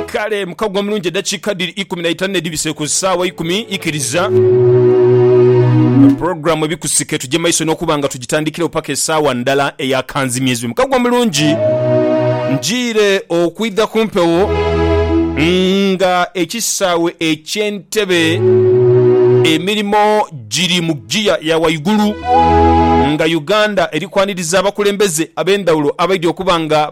Kale muka gwa mulungi eddakiika dhiri ikumi na itanu n'edhibise ku ssaawa ikumi. Ikiriza pulogulaamu ebikusike tuje maiso n'okuba nga tugitandikirewo paka essaawa ndala eya kanzimyezibwe. Muka gwa mulungi njiire okwidha ku mpewo nga ekisaawe eky'entebe emirimo giri mu ggiya ya waigulu nga Uganda eri kwaniriza abakulembeze ab'endhawulo abaidhi okuba nga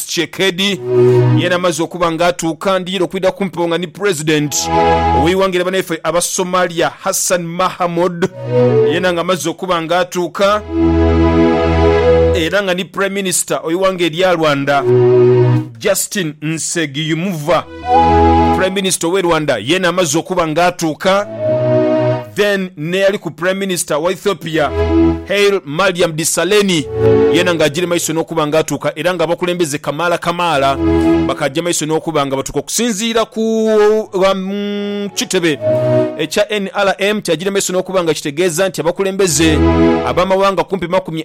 Tshisekedi yena amaze okuba nga atuuka ndiira okwidha kumpewo nga ni president oweiwanga lya banaife abasomalia Hassan Mahamud yena nga amaze okuba nga atuuka era nga ni prime minister oweiwanga erya Rwanda Justin Nsegiyumva Prime Minister owe Rwanda yena amaze okuba nga atuuka then neyaliku Prime Minister wa Ethiopia Hail Mariam Desalegni yena nga ajire maiso nokuba nga atuuka era nga abakulembeze kamaala kamaala bakaja maiso nokuba nga batuuka okusinziira ku kitebe ekya nrm kyajire maiso nokuba nga kitegeeza nti abakulembeze abamawanga kumpi makumi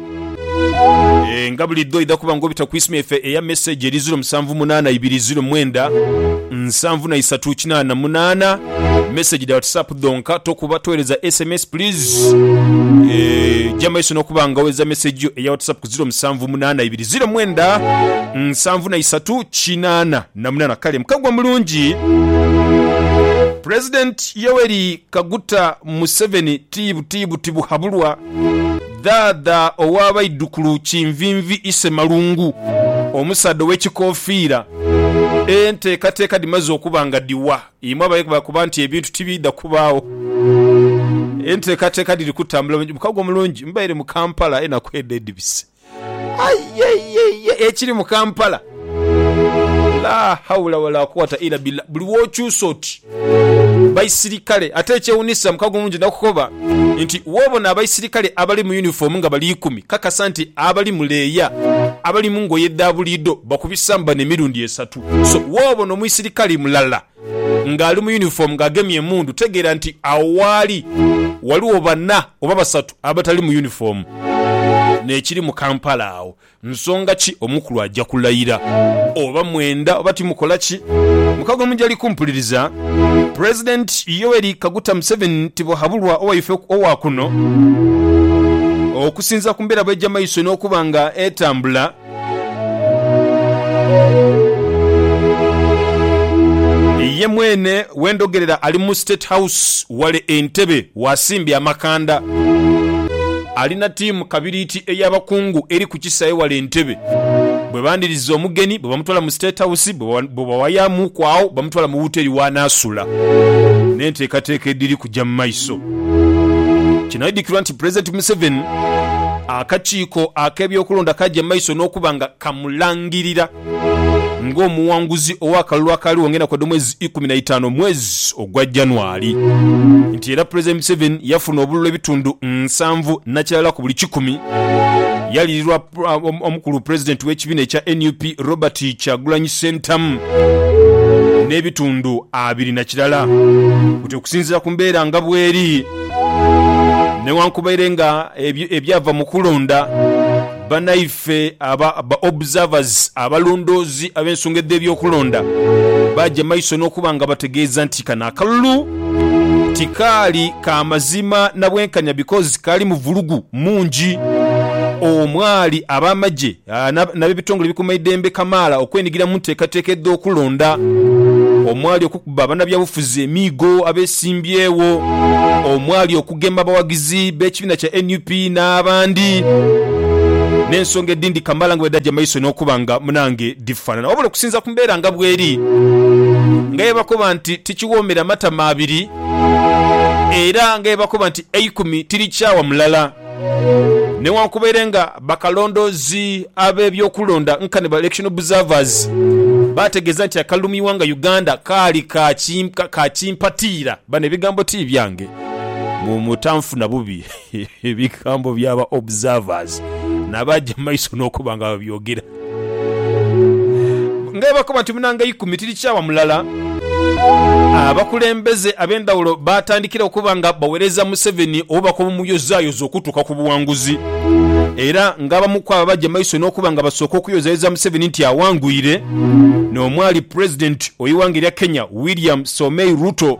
E, nga bulidho oidha kuba nga obita ku isimu yaife eya message eri ziro musanvu munaana ibiri ziro mwenda nsanvu na isatu kinaana munaana. Message dha WhatsApp dhonka, tokuba, toghereza sms please. E, ja maiso n'okuba nga oghereza message yo eya WhatsApp ku ziro musanvu munaana ibiri ziro mwenda nsanvu na isatu kinaana na munaana. Kale mukagwa mulungi. President Yoweri Kaguta Museveni tibu tibu tibuhabulwa. Dhaadha owa baidhukulu Kinvinvi Isemalungu, omusaadha ow'ekikofiira. Enteekateeka dhimaze okuba nga dhiwa imwe abakoba nti ebintu tibiidha kubaagho. Enteekateeka dhiri kutambula bulungi. Mukago omulungi. Mbaire mu Kampala aye naku edho edhibise. Aye ye ye ye ekiri mu Kampala! Laa haula wala kuwata ila billah buli wokyusa oti baisirikale ate ekyewunisa mukago omulungi nakukoba nti wobona abaisirikale abali mu uniform nga bali ikumi kakasa nti abali mu leeya abali mungoye dhabuliido bakubisamu bano emirundi esatu so wobona omuisirikale mulala nga ali mu uniform nga agemye emundu tegeera nti awo waali waliwo bana oba basatu abatali mu uniform nekiri mu Kampala awo Nsonga ki omukulu aja kulayira? Oba mwenda oba timukola ki? Mukago mujali kumpuliriza. President Yoweri Kaguta Museveni tibwahabulwa owaife owa kuno. Okusinzira ku mbeera bweja maiso n'okuba nga etambula, ye mwene wendogerera ali mu State House wale Entebbe. Wasimbi Amakanda alina tiimu kabiriiti ey'abakungu eri ku kisaawe wale e Ntebe. Bwe bandiriza omugeni, bwebamutwala mu State House, bwebawayamuuku agho bamutwala mu wuteri w'anaasula n'enteekateeka edhiri kuja mu maiso. Kinaidhukirwa nti Pulezidenti Museveni akakiiko ak'ebyokulonda kaja mu maiso n'okuba nga kamulangirira. ng'omuwanguzi ow'akalulu akaaliwo ng'enaku edh'omwezi ikumi na itaanu omwezi ogwa January nti era Pulezidenti Museveni yafuna obululu ebitundu nsanvu na kirala ku buli kikumi yaliirirwa omukulu Pulezidenti w'ekibiina ekya nup Robert Kyagulanyi Ssentamu n'ebitundu abiri na kirala buti okusinziira ku mbeera nga bweri newankubaire nga ebyava mu kulonda Banaife aba ba observers, abalondoozi ab'ensonga edh'ebyokulonda, baaja maiso n'okuba nga bategeeza nti kano akalulu tikaali ka mazima na bwenkanya because kaalimu vulugu mungi omwali ab'amagye n'abebitongole ebikuuma eidembe kamaala okwenigira mu nteekateeka edh'okulonda omwali ba banabyabufuzi emiigo abesimbyewo omwali okugema abawagizi b'ekibiina kya nup n'abandi n'ensonga edindi kamala nga bwedagya maiso n'okuba nga munange difanana wabula okusinza ku mbeera nga bweri nga byebakoba nti tikiwoomera matama abiri era nga byebakoba nti eikumi tirikyawa mulala. Newankubere nga bakalondoozi ab'ebyokulonda nkani ba election observers baategeeza nti akalumiwa nga Uganda kaali ka kimpatiira, bano ebigambo ti byange mutanfuna bubi, bigambo bya ba observers nabaaja mu maiso n'okuba nga babyogera. Ng'ebakoba nti munanga ikumi tiri kyawa mulala, abakulembeze ab'endhawulo baatandikira okuba nga baweereza Museveni obuba kw'obumuyozayoza okutuuka ku buwanguzi era ng'abamu kwabo baja maiso n'okuba nga basooka okuyozayoza Museveni nti awangwire n'omwali Pulezidenti ow'eighanga erya Kenya, William Soemei Ruto.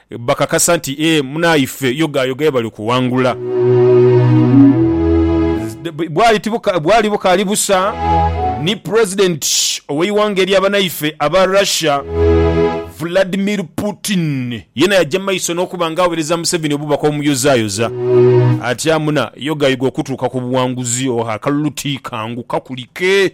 Bakakasa nti, Ee, munaife, yogaayoga ye bali kuwangula. Bwali tibuka, bwali bukaali busa ni President ow'eighanga erya banaife aba Russia, Vladimir Putin, yena yaja maiso n'okuba nga awereza Museveni obubaka obumuyozaayoza ati, Amuna, yogayoga okutuuka ku buwanguzi, oha, akalulu ti kangu, kakulike.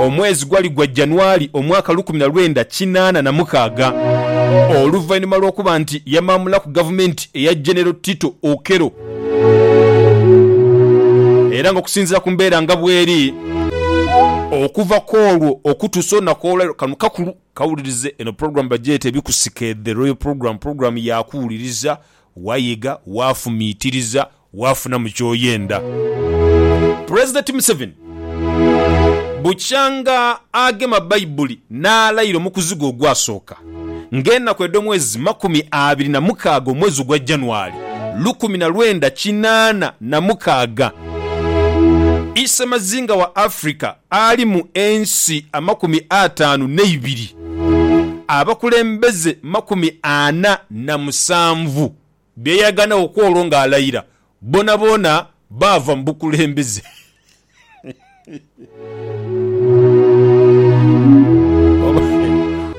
Omwezi gwali gwa January omwaka lukumi na lwenda kinaana na mukaaga, oluvainhuma lw'okuba nti yamaamulaku gavumenti eya Genero Tito Okello, era nga okusinziira ku mbeera nga bweri, okuva kw'olwo okutuusa olunaku olwaleero, kano kakulu, kawulirize eno pulogulaamu bagyeta Ebikusike The Royal Programme, pulogulaamu ya kuwuliriza, wayiga, wafumiitiriza, waafunamu ky'oyenda. Pulezidenti Museveni bukyanga agema Baibuli n'alaira omukuzigo ogwasooka ng'enaku edh'omwezi makumi abiri na mukaaga omwezi ogwa January lukumi na lwenda kinaana na mukaaga. I Ssemazinga wa Africa ali mu ensi amakumi ataanu n'eibiri, abakulembeze makumi ana na musanvu. bye yaganagho ku olwo ng'alayira, boonaboona baava mu bukulembeze.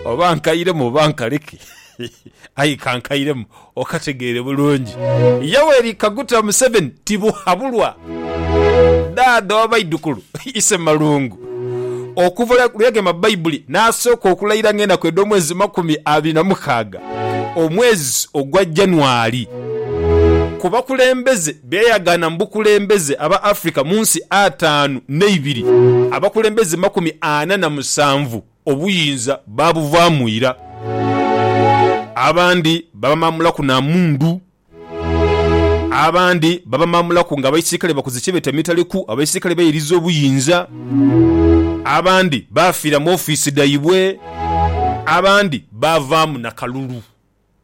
Oba nkairemu oba nkaleke, aye ka nkairemu okategeere bulungi. Yoweri Kaguta Museveni tibuhabulwa. Dhaadha w'abaidhukulu, Ise Malungu. Okuva lwe yagema Baibuli n'asooka okulayira ng'enaku edh'omwezi makumi abiri na mukaaga, omwezi ogwa January. Ku bakulembeze be yayagaana mu bukulembeze aba Africa mu nsi ataanu n'eibiri, abakulembeze makumi ana na musanvu obuyinza baabuvaamu ira. Abandi baamamulaku na mundu Abandi babamaamulaku nga abaisirkale bakoze kye beeta mitaleku, abaisirkale bairiza obuyinza. Abandi baafiira mu ofiisi dhaibwe. Abandi baavaamu na kalulu.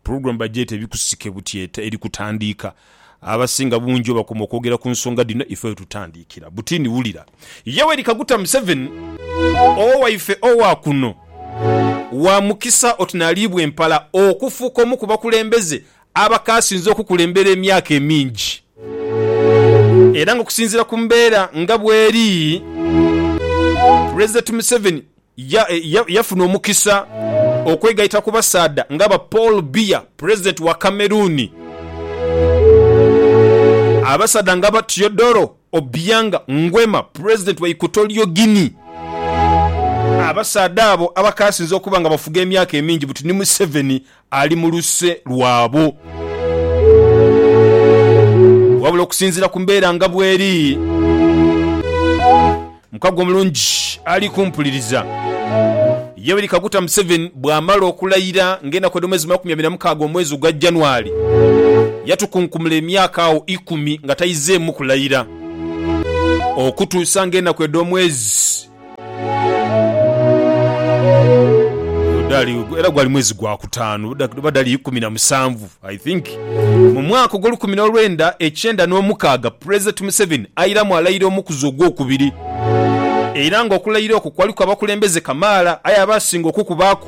Pulogulaamu bagyeta Ebikusike Butyeta eri kutandiika. Abasinga bungi bwebakoma okwogera ku nsonga dhino ife wetutandiikira. Butini wulira. Yoweri Kaguta Museveni, owo waife owa kuno, wa mukisa oti n'aliibwa empala okufuuka omu ku bakulembeze aba k'asinze okukulembera emyaka emingi. Era ng'okusinziira ku mbeera nga bw'eri, Pulezidenti Museveni yafuna omukisa okwegaita ku basaadha nga ba Paul Biya, Pulezidenti wa Cameroon, abasaadha nga ba Teodoro Obiang Nguema, Pulezidenti wa Equatorial Guinea. Abasaadha abo aba k'asinze okuba nga bafuga emyaka emingi buti ni Museveni ali mu luse lwabo. Wabula okusinziira ku mbeera nga bw'eri, mukago mulungi ali kumpuliriza. Yoweri Kaguta Museveni bw'amala okulayira ng'enaku edh'omwezi makumi abiri na mukaaga omwezi ogwa January, yatukunkumula emyaka agho ikumi nga taizeemu kulayira okutuusa ng'enaku edh'omwezi. Gudali, era gwali mwezi gwa kutaanu, oba- oba dali ikumi na musanvu i think mu mwaka ogw'olukumi n'olwenda ekyenda n'omukaaga pulezidenti museveni airamu alayira omukuzi ogwokubiri era nga okulayira okwo kwaliku abakulembeze kamaala aye abaasinga okukubaaku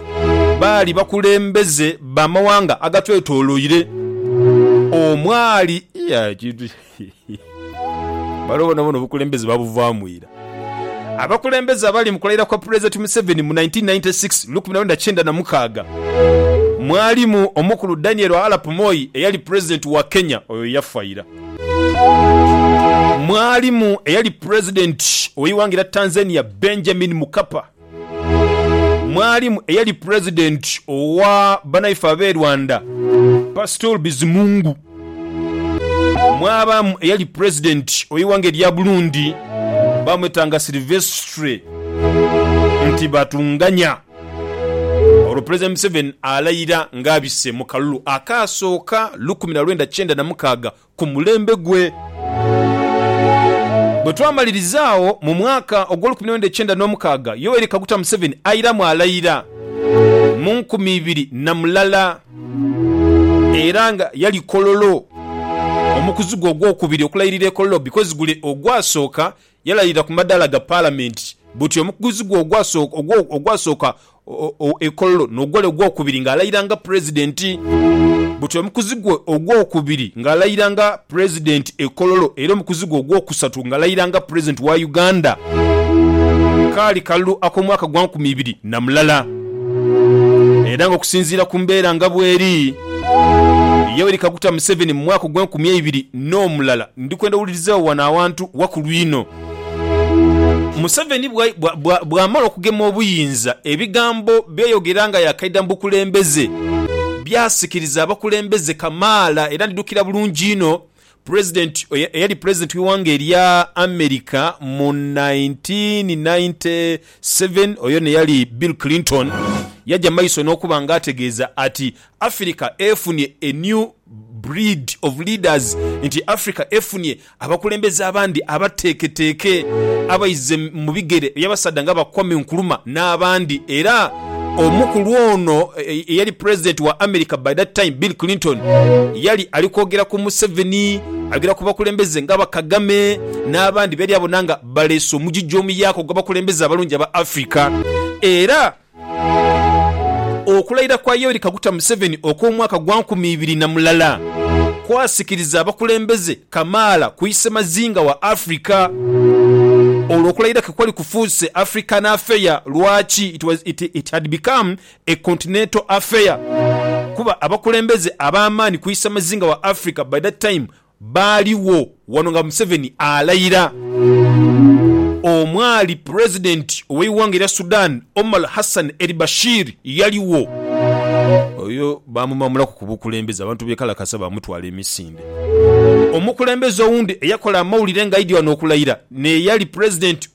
baali bakulembeze bamawanga agatwetoloire omwali Iya, ekintu Bano bonabona obukulembeze babuvaamu ira. Abakulembeze abaali mu kulayira kwa Pulezidenti Museveni mu 1996, lukumi na lwenda kyenda na mukaaga, mwalimu omukulu Daniel Arap Moi eyali Pulezidenti wa Kenya, oyo yafa ira. Mwalimu eyali Pulezidenti ow'eighanga erya Tanzania Benjamin Mkapa. mwalimu eyali pulezidenti owa banaife ab'e Rwanda Pastor Bizimungu, mwabaamu eyali pulezidenti ow'eighanga erya Burundi bamwetanga Silvestre Ntibatunganya. Olwo Pulezidenti Museveni alayira ng'abise mu kalulu akaasooka lukumi na lwenda kyenda na mukaaga ku mulembe gwe. Bwe twamaliriza agho, mu mwaka ogw'olukumi n'omwenda ekyenda n'omukaaga, Yoweri Kaguta Museveni airamu alayira mu nkumi ibiri na mulala era nga yali Kololo, omukuzi gwe ogwokubiri okulayirira e Kololo bikozi gule ogwasooka Yalayirira ku madaala ga Palamenti buti omukuguzi gwe ogwasooka e Kololo n'ogwali ogwokubiri ng'alayira nga Pulezidenti. Buti omukuzi gwe ogwokubiri ng'alayira nga Pulezidenti e Kololo era omukuzi gwe ogwokusatu ng'alayira nga Pulezidenti wa Uganda. Kaali kalulu ak'omwaka gwa nkumi ibiri na mulala era ng'okusinziira ku mbeera nga bweri, Yoweri Kaguta Museveni mu mwaka ogw'enkumi eibiri n'omulala Ndi kwenda wulirizaagho wano awantu wakulu inho. Museveni bwamala okugema obuyinza, ebigambo byeyogera nga yakaidha mu bukulembeze byasikiriza abakulembeze kamaala era ndidhukira bulungi inho President eyali President w'eighanga erya America mu nineteen ninety seven oyo n'eyali Bill Clinton yaja maiso n'okuba nga ategeeza ati Africa efunye a new breed of leaders, nti Africa efunye abakulembeze abandi abateeketeeke abaize mu bigere by'abasaadha nga ba Kwame Nkrumah n'abandi era omukulu ono eyali Pulezidenti wa America by that time Bill Clinton yali ali kwogera ku Museveni, ayogera ku bakulembeze nga ba Kagame n'abandi beyali abona nga baleese omugigi omuyaaka ogw'abakulembeze abalungi aba Africa era Okulayira kwa Yoweri Kaguta Museveni okw'omwaka gwa nkumi ibiri na mulala kwasikiriza abakulembeze kamaala ku isemazinga wa Africa olwo okulayira ke kwali kufuuse African affair. Lwaki? It was, it, it had become a continental affair kuba abakulembeze ab'amaani ku isemazinga wa Africa by that time Baaliwo wano nga Museveni alayira. Omwali Pulezidenti ow'eighanga erya Sudan, Omar Hassan el-Bashir yaligho. Oyo baamumamulaku ku bukulembeze, abantu beekalakasa baamutwala emisinde. Omukulembeze owundi eyakola amawulire ng'aidhi wano okulayira n'eyali Pulezidenti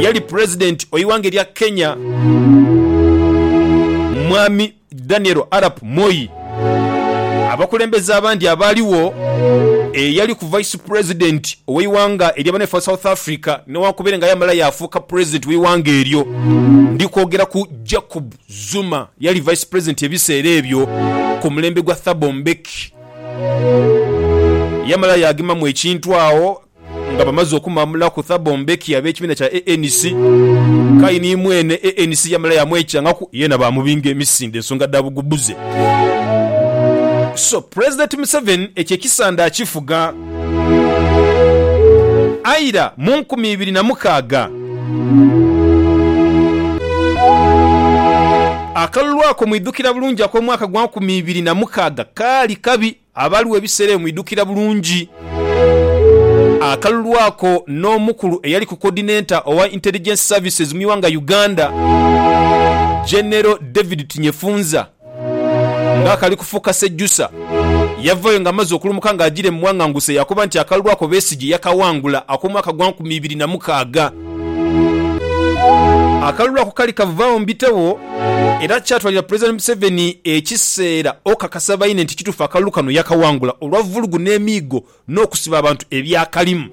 Eyali Pulezidenti oighanga erya Kenya Mwami Daniel Arap Moi, abakulembeze abandi abaaligho, eyaliku Vice Pulezidenti ow'eighanga ery'abaneefa South Africa newankubere nga yaamala yaafuuka Pulezidenti w'eighanga eryo, ndi kwogera ku Jacob Zuma eyali Vice Pulezidenti ebiseera ebyo ku mulembe gwa Thabo Mbeki. Yaamala yaagemamu ekintu agho nga bamaze okumamulaku Thabo Mbeki ab'ekibiina kya ANC, k'aye ni mwene ANC yamala yamwekyangaku yeena baamubinga emisinde ensonga dha bugubuze. So Pulezidenti Museveni ekyo ekisanda akifuga. Aira mu nkumi ibiri na mukaaga, akalulu ako mwidhukira bulungi ak'omwaka gwa nkumi ibiri na mukaaga kaali kabi. Abaaliwo ebiseera ebyo mwidhukira bulungi akalulu ako n'omukulu eyaliku Coordinator owa Intelligence Services mu ighanga Uganda, General David Tinyefunza nga akali kufuuka sejusa yavayo nga amaze okulumuka nga ajire mu Mwanganguse yakoba nti akalulu ako Besigye yakaghangula akomwaka gwa nkumi ibiri na mukaaga. Akalulu ako kali kavaawo mu bitabo era kyatwalira Pulezidenti Museveni ekiseera okakasa baine nti kituufu akalulu kano yakawangula olwa vulugu n'emiigo n'okusiba abantu ebyakalimu.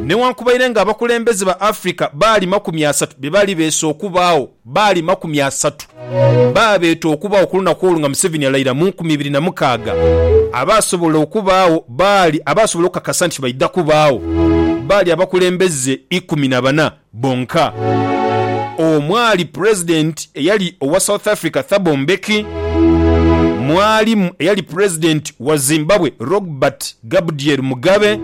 Newankubaire nga abakulembeze ba Africa baalima ku myasatu bye baali beese okubaagho, Baali makumi asatu baabeeta okubaawo ku lunaku olwo nga Museveni alaira mu nkumi ibiri na mukaaga. Abaasobola okubaawo baali abaasobola okukakasa nti baidha kubaawo baali abakulembeze ikumi na bana bonka omwali Pulezidenti eyali owa South Africa Thabo Mbeki, mwalimu eyali Pulezidenti wa Zimbabwe Rogbert Gabdiel Mugabe,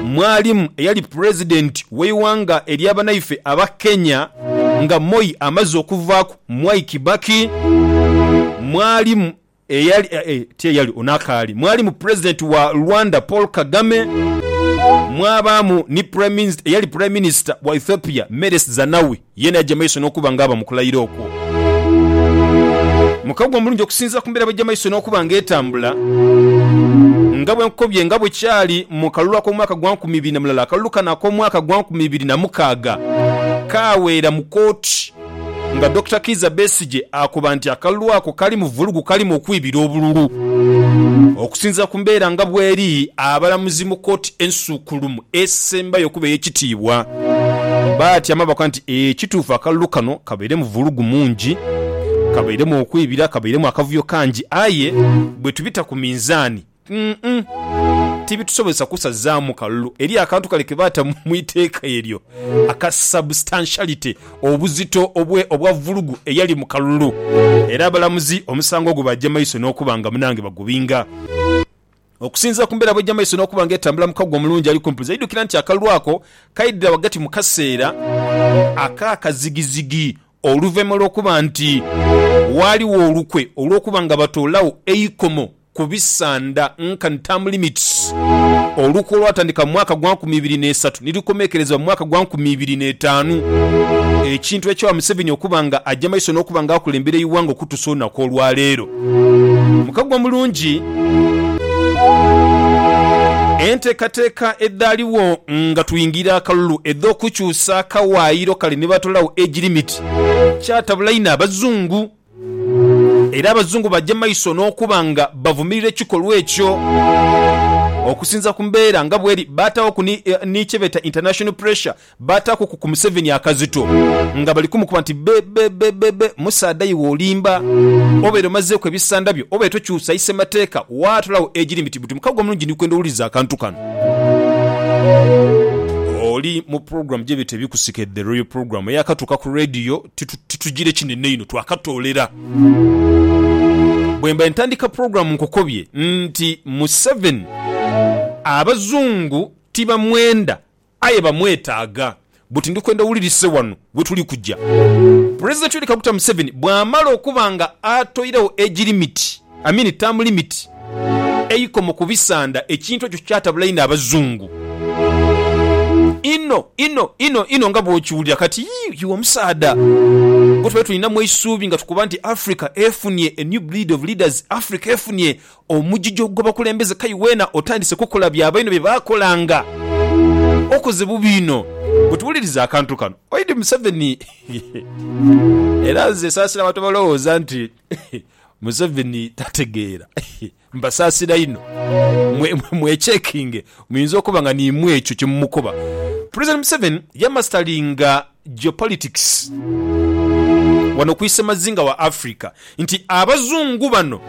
mwalimu eyali pulezidenti w'eighanga erya banaife aba Kenya nga Moi amaze okuvaaku, Mwai Kibaki, mwalimu eyali, ti eyali, ono akaali, mwalimu pulezidenti wa Rwanda Paul Kagame, mwabaamu ni eyali pulaiminisita wa Ethiopia Meles Zanawi. Ye n'aja mu maiso n'okuba ng'aba mu kulayira okwo. Mu kaguwa omulungi okusinziira ku mbeera bw'eja mu maiso n'okuba ng'etambula, nga bwe nkukobye, nga bwe kyali mu kalulu ak'omwaka gwa nkumi ibiri na mulala, akalulu kano ak'omwaka gwa nkumi ibiri na mukaaga kaaweera mu kooti nga Dokita Kiiza Besigye akoba nti akalulu ako kalimu vulugu, kalimu okwibira obululu. Okusinziira ku mbeera nga bw'eri, abalamuzi mu kooti ensukkulumu, esembayo okuba ey'ekitiibwa. Batyama bakoba nti, Ee, kituufu akalulu kano kabairemu vulugu mungi, kabairemu okwibira, kabairemu akavuyo kangi. Aye bwe tubita ku minzaani, umm, tibitusobozesa kusazaamu kalulu eri akantu kale ke baata mu iteeka eryo aka substantiality, obuzito obwe, obwa vulugu eyali mu kalulu. Era abalamuzi omusango ogwo baagya maiso n'okuba nga munange bagubinga. Okusinziira ku mbeera bw'egy'amaiso n'okuba ng'etambula mu kaguwa omulungi ali kumpi buza, idhukira nti akalulu ako kaidhira ghagati mu kaseera ak'akazigizigi oluvaima lw'okuba nti waaliwo olukwe olw'okuba nga batoolagho eikomo ku bisanda nkani term limits. Olukwe olwatandika mu mwaka gwa nkumi ibiri n'esatu ni lukomekerezebwa mu mwaka gwa nkumi ibiri n'etaanu, ekintu ekyawa Museveni okuba nga aja maiso n'okuba nga akulembera eighanga okutuusa olunaku olwaleero. Mukago mulungi enteekateeka edhaaliwo nga twingira akalulu edh'okukyusa akawaayiro kale ni batolawo age limit kyatabula inho Abazungu era Abazungu baja maiso n'okuba nga bavumirira ekikolwa ekyo. Okusinza ku mbeera nga bweri, baataaghoku ni kye beeta international pressure Baataaku ku ku Museveni akazito nga bali kumukuba nti, Be, be, be, be, be, musaadha iwe olimba. Obeere omazeeku ebisanda byo, obeere tokyusa ise mateeka, waatulagho egiri miti buti. Mukago omulungi ndi kwenda owulirize akantu kano. Oli mu pulogulaamu gyebeta Ebikusike The Royal Program eyakatuuka ku leediyo titugira kinene inho, twakatoolera. Bwemba ntandika pulogulaamu nkukobye nti Museveni Abazungu tibamwenda Aye bamwetaaga. Buti ndi kwenda owulirise wano we tuli kuja. President Yoweri Kaguta Museveni bwamala okuba nga atoiregho age limit, I mean term limit, eikomo ku bisanda, ekintu ekyo kyatabula inho abazungu. Inho, inho, inho, inho nga bwokiwulira kati. Yii, yii omusaadha gwe twali tulinamu eisuubi nga tukoba nti Africa efunye a new breed of leaders, Africa efunye Omugigyo gw'abakulembeze kai weena otandise kukola bya bainho bye baakolanga. Okoze bubi inho. Bwetuwuliriza akantu kano, oidhi Museveni. Era nze saasira abantu abalowooza nti Museveni tategeera. Mbasaasira inho. Mwe, mwe, mwechekinge. Muyinza okuba nga niimwe ekyo kye mumukoba. President Museveni yamasitalinga Geopolitics wano ku isemazinga wa Africa nti abazungu bano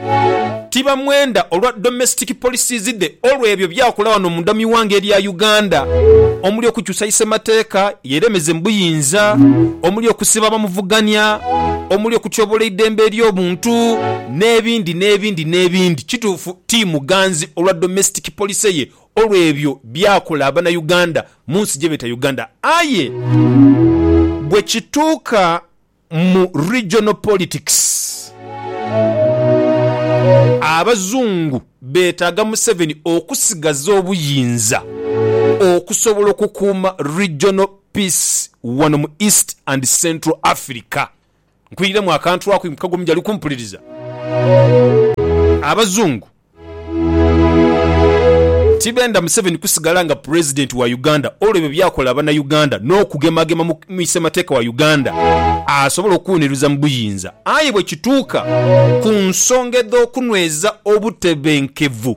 tibamwenda olwa domestic policies dhe olwe ebyo byakola wano munda mu iwanga elya Uganda omuli okukyusa isemateeka yeremeze mu buyinza, omuli okusiba abamuvugania, omuli okutyobola eidembe elyobuntu nebindi nebindi nebindi. Kituufu timuganzi olwa domestic policy ye olwe ebyo byakola abana Uganda munsi gyebeta Uganda aye bwekituuka mu regional politics abazungu betaaga Museveni okusigaza obuyinza okusobola okukuuma regional peace wano mu East and Central Africa Nkwiremu akantu ako impuka ghomu jali kumpuliriza. Abazungu tibenda Museveni kusigala nga Pulezidenti wa Uganda olw'ebyo byakola Banauganda n'okugemagema mu Muisemateeka wa Uganda asobole okuwuniruza mu buyinza. Aye bwekituuka ku nsonga edh'okunweza obutebenkevu,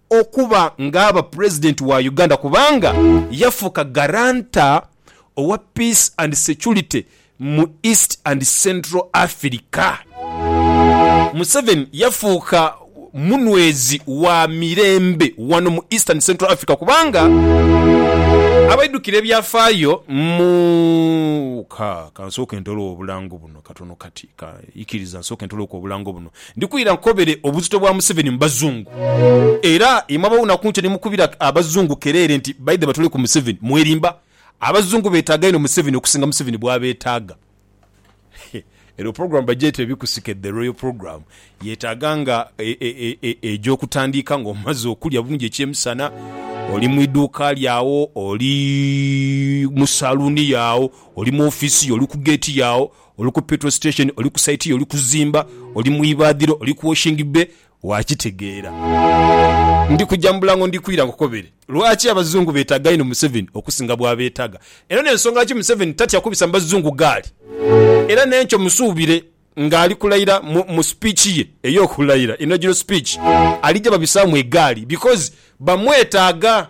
okuba ng'aba Pulezidenti wa Uganda kubanga yafuuka Guarantor owa Peace and Security mu East and Central Africa. Museveni yafuuka munwezi wa mirembe wano mu East and Central Africa kubanga abaidhukira ebyafaayo mu Ka, ka nsooke ntoloke obulango buno katono kati. Ka, ikiriza nsooke ntoloke obulango buno. Ndi kwira nkobere obuzito bwa Museveni mu Bazungu. Era imwe abawunaku ntyo ni mukubira Abazungu kereere nti baidhe batule ku Museveni. Mwerimba. Abazungu betaaga inho Museveni okusinga Museveni bwabetaaga. Eno program bagyeta Ebikusike The Royal Program. Yetaaga nga egy'okutandiika nga omaze okulya bulungi eky'emisana, oli mu iduuka lyo agho, oli mu saluuni yo agho, oli mu office yo, oli ku gate yo agho, Oli ku petrol station, oli ku site yo, oli kuzimba, oli mu ibaadhiro, oli ku washing bay, waakitegeera. Ndi kuja mu bulango ndi kwira nkukobere lwaki Abazungu beetaaga inho Museveni okusinga bw'abeetaga era n'ensonga lwaki Museveni tatya kubisa mu Bazungu gaali era n'enkyo musuubire ng'ali kulayira mu mu speech ye ey'okulayira, inaugural speech, alija babisaamu egaali because bamwetaaga.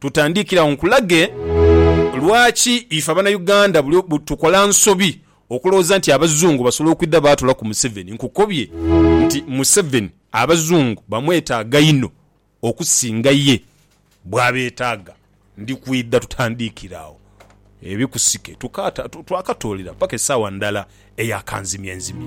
Tutandikire agho nkulage lwaki ife abanauganda buli tukola nsobi okulowooza nti abazungu basobola okwidha baatula ku Museveni. Nkukobye nti Museveni abazungu bamwetaaga inho okusinga ye bwabetaaga. Ndi kwidha tutandikire agho ebikusike twakatoolera paka esaawa ndala eya kanzimyenzimye.